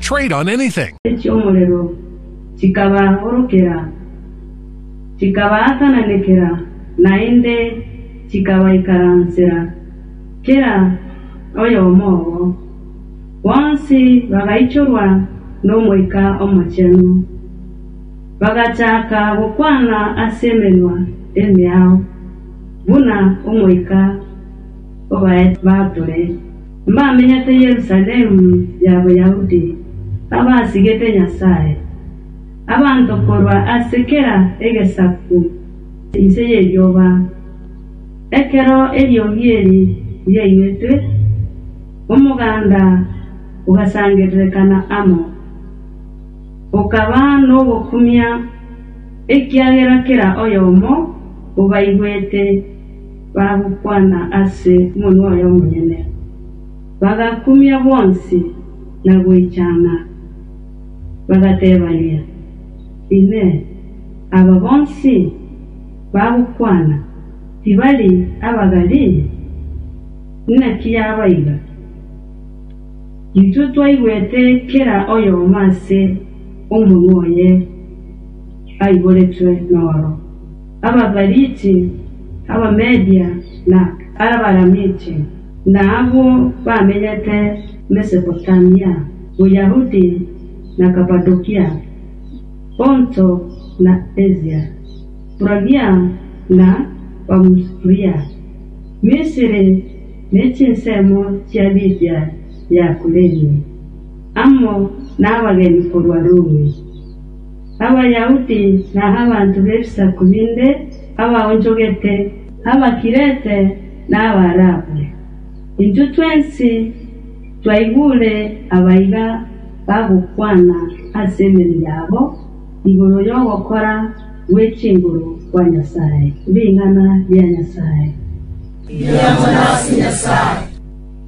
Trade on anything. echi'omorero, chikabaagorokera, chikabaatananekera, naende chikabaikaransera, kera oyomo obo. Bonsi bagaichorwa n'Omoika Omochenu, bagachaaka gokwana as'emenwa emeao, buna Omoika obaete batore. Mbamenyete Yerusalemu ya Boyahudi, abasigete Nyasae, abanto korwa ase kera egesaku inse y'erioba. Ekero eriogi eri riaigwetwe, omoganda ogasangererekana amo, okaba nogokumia, ekiagera kera oyomo obaigwete. bagokwana ase monwa oyomonyene, bagakumia bonsi na goichana, bagateebania, Inee! Aba bonsi bagokwana tibari Abagalili? Naki yaba iga? Intwe twaigwete kera oyomo ase omonwa oye aiboretwe noro. Abaperiti, Abamedia, na Abalamiti, na abwo bamenyete Mesopotamia, Boyahudi, na Kapadokia, Ponto na Asia, Furagia na Pamufulia, Misiri ne chinsemo chia Libia ya Kureni, amo nabageni korwa Rumi. Abayahudi na abanto b'ebisaku binde abaonchogete, Abakirete na Abaarabu. Intwe twensi twaigure abaiga bagokwana ase emenwa yabo igoro y'ogokora gwe chinguru kwa Nyasae, ring'ana ria Nyasae. Riambo nase Nyasae.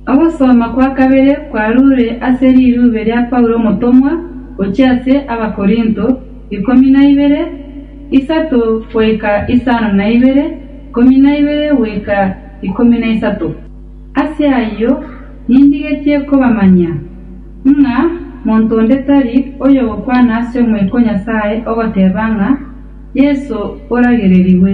Ogosoma kwa kabere kwarure ase rirube ria Paulo omotomwa gochia ase Abakorinto, ikomi na ibere, isato goika isano na ibere, ikomi na ibere goika ikomi na isato. Ase ayio nindigetie kobamanyia, ng'a monto onde tari oyogokwana ase Omoika o Nyasae ogoteba ng'a Yeso oragererigwe,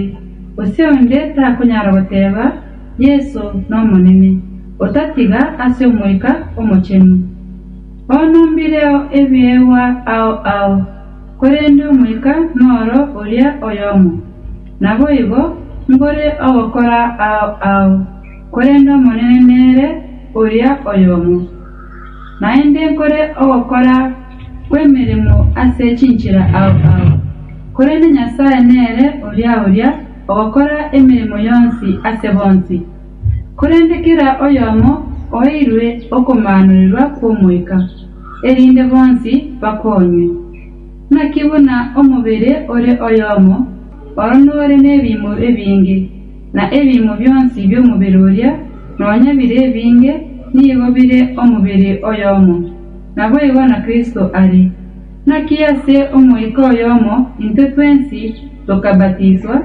gose onde takonyara goteba, Yeso n'Omonene, otatiga ase Omoika Omochenu. Onumbireo ebiegwa ao ao, korende Omoika noro oria oyomo. Naboigo mbore ogokora ao ao, korende Omonene nere oria oyomo. Naende nkore ogokora kw'emeremo ase chinchera ao ao, korende Nyasae nere oria oria. ogokora emeremo yonsi ase bonsi. Korende kera oyomo oeirwe okomaanorerwa kw'Omoika, erinde bonsi bakonywe. Naki buna omobere ore oyomo, oro nore nebiimo ebinge, na ebiimo bionsi bi'omobere oria, nonya bire ebinge, nigo bire omobere oyomo. Naboigo na Kristo are. Naki ase Omoika oyomo intwe twensi tokabatiswa,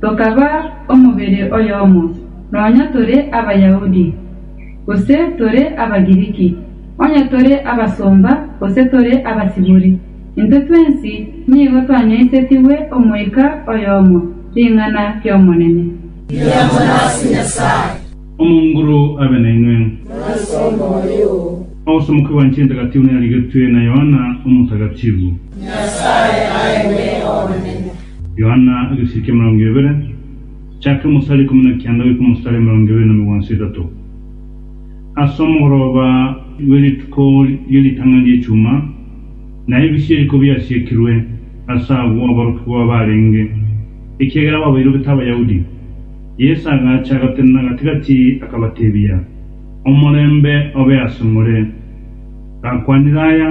tokaba omobere oyomo, nonya tore Abayahudi, gose tore Abagiriki, onye tore abasomba gose tore abasibore, intwe twensi nigo twanyaisetigwe Omoika oyomo, ring'ana ri'Omonene. Riambo nase Nyasae. Omonguru abe nainwe. Nase omoyo oo. Ogosomoka gwa Inche Entagatifu narigetwe na Yohana Omotagatifu. Nyasae aeng'we omonene. Yohana egesiri ki'emerongo ebere, chake omosare ikomi na kianda goika omosare emerongo ebere na migwanso etato. Ase omogoroba bwe rituko rie ritang'ani ri'echuma, na ebise eriko biasiekirwe, ase agwo aborokigwa baarenge, ekiagera babairogete Abayahudi. Yeso agacha agatenena gati-gati, akabatebia, Omorembe obe asomore. Gakwanire aya,